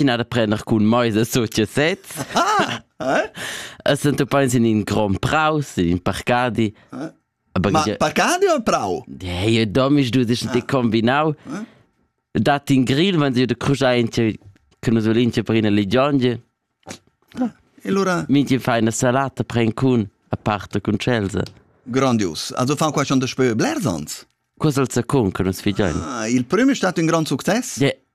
ina da prender cun meisa sut je set. Es du peins in in grom praus, in in parcadi. Aber Ma parcadi o prau? Hey, domisch du dich die kombinau. Dat in grill, wenn du de crujainche che nos volinche per ina ligionge. E lura minti fa una salata pren cun a parte con Chelsea. Grandios. Also fan qua schon das Spiel bler sonst. Cosa al second che nos figiain. Ah, il primo è stato un gran successo. Yeah.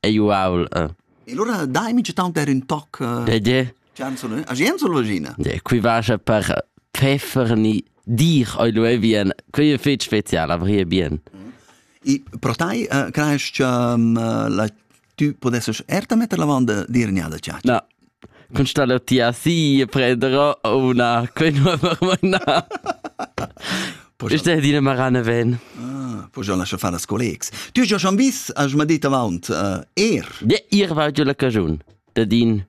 Ei uaul. Eh. E allora dai mi tanter ün toc eh, De de. Gianzolo, a Gianzolo Logina. De, qui vaja per peffer ni dir oi lu bien. Qui è fetg special, avrie bien. E pro tai eh, crees che um, la tu podesses erta metter la vanda dir gnada ciac? No, Cun sta leu ti assi e prender una quenua marmona. Questa è dina marana ven. Ah, poi già lascia fare a collegs. Tu hai schon vis, als m'ha detto avant, uh, er. Ja, ihr wart ja la cagiun, da din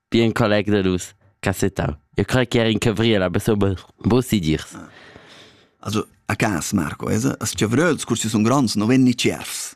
bien colleg da dus cassettau. Io credo che era in Cabriela, aber so muss sie dirs. Also, a cas, Marco, es, as chavreus cursi sun grands, no ven ni cierfs.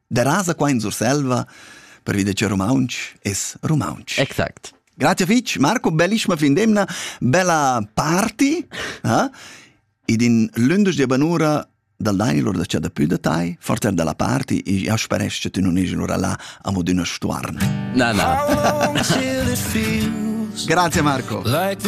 Derasa qua in Surselva pervi da che rumauntsch es rumauntsch. Exact. Grazie fitch, Marco, bellissima fin d'emna, bella party, eh? ed in lündisch di banura dal Daini lur da c'è da più da tai, forter dalla party, e io speresch che tu non esi lura là amo d'una stuarne. Na, na. Grazie Marco. Like the